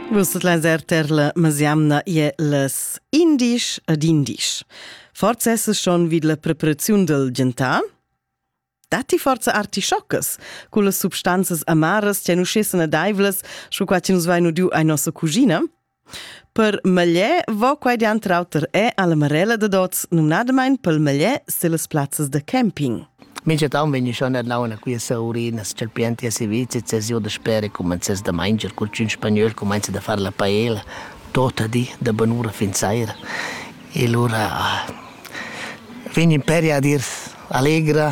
Vus tot las erter la masiamna ie las indisch ad indisch. Forza esses schon vid la preparaziun del gentar? Datti forza artischoccas, cu las substanzas amaras tian uscessen adaivlas, sco qua che nus vain udiu ai nossa cugina? Per meglier vo quai denter auter er alla Marella dad oz, numnadamain pel meglier sillas plazzas da camping. Mintgatant vegn schon ad launa quia sa urinas, cha'l pianti si vizet, ses io da spera cumenzess da manger, cur ch'ün spagnöl cumainza da far la paella tota di da bunura fin saira. E lura ah, vegn imperi ad ir allegra,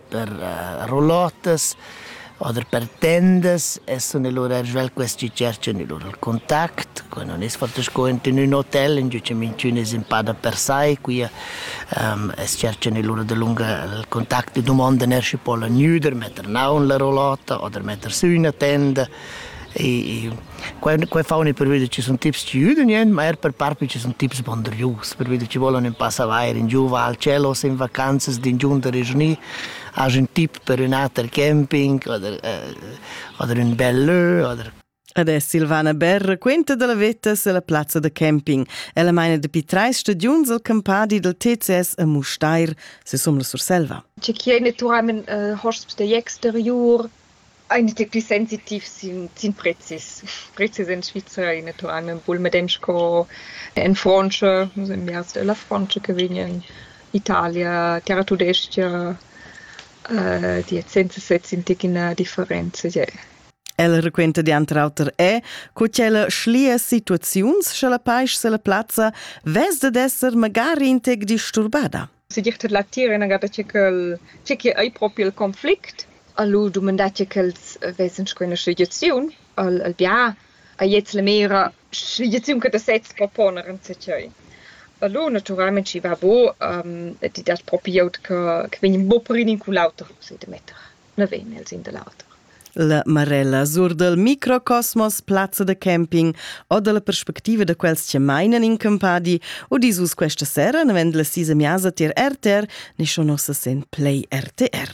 per rolottas oder per tendas e sun e lur eir svelt quest chi tscherchan i lur contact. Qua nun es fat sco ent in ün hotel, ingio cha minchün es ün pa dapersai, quia as tscherchan i lur dalunga il contact e dumondan eir schi po'l gnüder, metter naun la rolotta oder metter sü üna tenda. E quei, quei fa unet pervida ci sun tips ci üden ien, ma er per parpi ci sun tips bondrius, pervida ci volan ün pass avair in giuva al cielo, se in vacanzas d'ingiunta regiunì, has ün tip per ün ater camping oder, äh, oder ün bel lö oder Adesso Silvana Berr raquenta dalla veta sulla plazza da camping. Ella meina dapi treis stagiuns al campadi dal TCS a Mustair, se sum la Surselva. Ci chie naturalment äh, hosps da exteriur, Aint il plü sensitiv sin sin prezis. Prezis in Svizra e natural vul medem sco en Frontscha, nus ün biars da la Frontscha che vegn in Italia, Terratudestga, di et senza sez in tic ina differenza je. Ella raquenta dianter auter è, co ch'ella schlia situaziuns scha la paisch se la plazza vess dad esser magari in tec disturbada. segir tar l'attir ina gada tge ch'el tge che ei propi il conflict. Lu dumandà tge ch'els vesan sco ina sligiaziun al al bia, a gliez la mera sligiaziun che ti sez proponer enzatgei. Lu naturalmein schi va buc, ti dat propi glieud che che vegn buc per in u l'auter, so di metter. na vegn el sin da l'auter. La Marella sur dal microcosmos, plazza da camping o dalla perspectiva da quels che mainan in campadi u dis us questa sera, navend la sisa miasa tier RTR, ne schon nossa sen play RTR.